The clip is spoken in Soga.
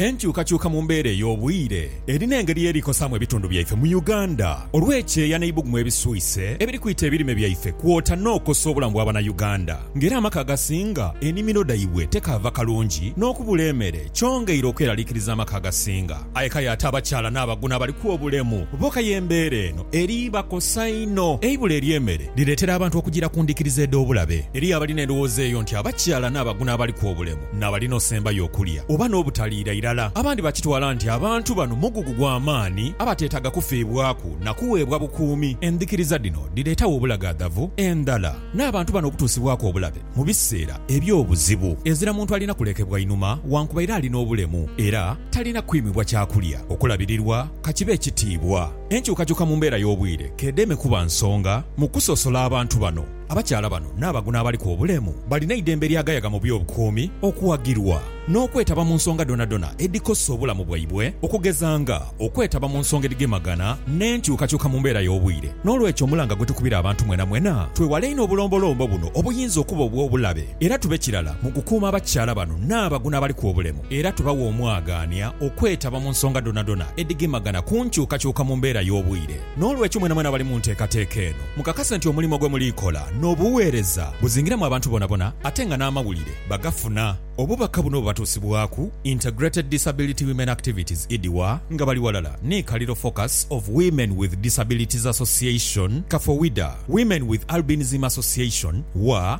Enkyukakyuka mu mbeera ey'obwire erina engeri y'eri kosaamu ebitundu byaife mu Uganda olw'ekyeeya n'eibugumu ebiswise ebiri kwita ebirime byaife kwota n'okosa obulamu bwa bana Uganda nga era amaka agasinga enimiro dhaibwe tekaava kalungi n'okubula emere kyongeire okweralikiriza amaka agasinga aye kale ate abakyala n'abaguna abaliku obulemu boka y'embeera eno eri bakosa inho eibula ery'emere Lireetera abantu okujiira ku ndhikiriza edh'obulabe. Eriyo abalina endhowooza eyo nti abakyala n'abagu n'abaliku obulemu n'abalina osembayo okulya oba n'obutaliira irala. Abandi bakitwala nti abantu bano mugugu gwa maani abateetaaga kufiibwaku na kuweebwa bukuumi. Endhikiriza dhino dhireetagho obulagaadhavu, endhala, n'abantu bano okutuusibwaku obulabe mu biseera eby'obuzibu. Ezira muntu alina kulekebwa inhuma wankubaire alina obulemu era talina kwimibwa kyakulya, okulabirirwa, ka kibe ekitiibwa. Enkyukakyuka mu mbeera y'obwire k'edeme kuba nsonga mu kusosola abantu bano. Abakyala bano n'abagu n'abaliku obulemu balina eidembe lyagayaga mu by'obukuumi okuwagirwa n'okwetaba mu nsonga dhonadhona edhikosa obulamu bwaibwe okugeza nga okwetaba mu nsonga edhigemagana n'enkyukakyuka mu mbeera y'obwire. N'olwekyo omulanga gwetukubira abantu mwenamwena twewale einho obulombolombo buno obuyinza okuba obw'obulabe era tube kirala mu kukuuma abakyala bano n'abagu n'abaliku obulemu. era tubawa omwagaania okwetaba mu nsonga dhonadhona edhigemagana ku nkyukakyuka mu mbeera y'obwire. N'olwekyo mwenamwena abali mu nteekateeka eno, mukakase nti omulimo gwe muli kola n'obuweereza buzingiramu abantu bonabona ate nga n'amawulire bagafuna. Obubaka buno bubatuusibwaku Integrated Disability Women Activities, IDWA, nga bali ghalala ni Kaliro Focus of Women with Disabilities Association, Kafowida, Women with Albinism Association, WWAA,